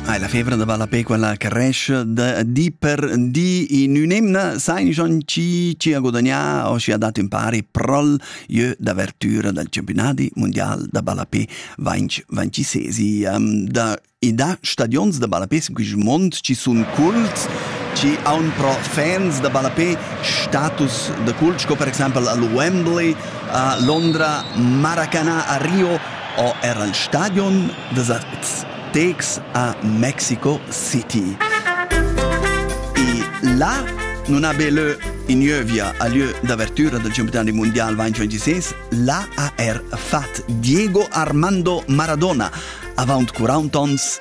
Ah, la febra da balla pe quella che resce da di per di in un'emna sai schon ci ci ha guadagnato o ci ha dato in pari prol jeu d'avertura dal campionati mondial da ballape 2026 um, da e da stadions da ballape in quel mond ci sun cults ci aun pro fans da ballape status da cult sco per exempel al Wembley a Londra Maracana a Rio ò er il stadion da Zacatecas a Mexico City. E là non ha be leu in gnövia a lieu d'avertura del campionat mondial 2026, là ha er fat Diego Armando Maradona, avant 40 ans,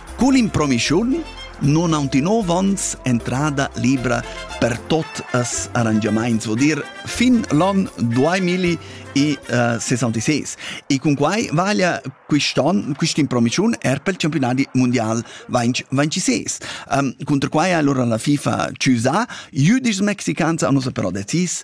Cun improvischiun non aunc in nov ons entrada libra per tot as arrangiamaints, vo dir fin l'on 2066. E cun quai vaglia quist'on, quist'impromischiun er pel campionat mundial 2026. Um, cunter quai allora la FIFA ciusa, jüdischs mexicans hanno però decis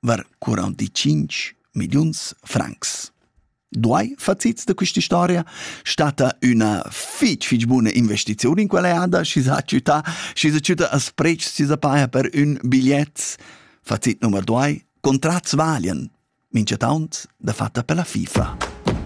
var 45 milliuns francs. Duai facits da questa storia stata üna fitg fitg buna investiziun in quella eada, schi s'ha ciutà, schi s'ha ciutà a sprecs, schi s'ha paja per ün bigliet. Facit nummer 2, contrats valian, mincha taunt da fatta per la FIFA.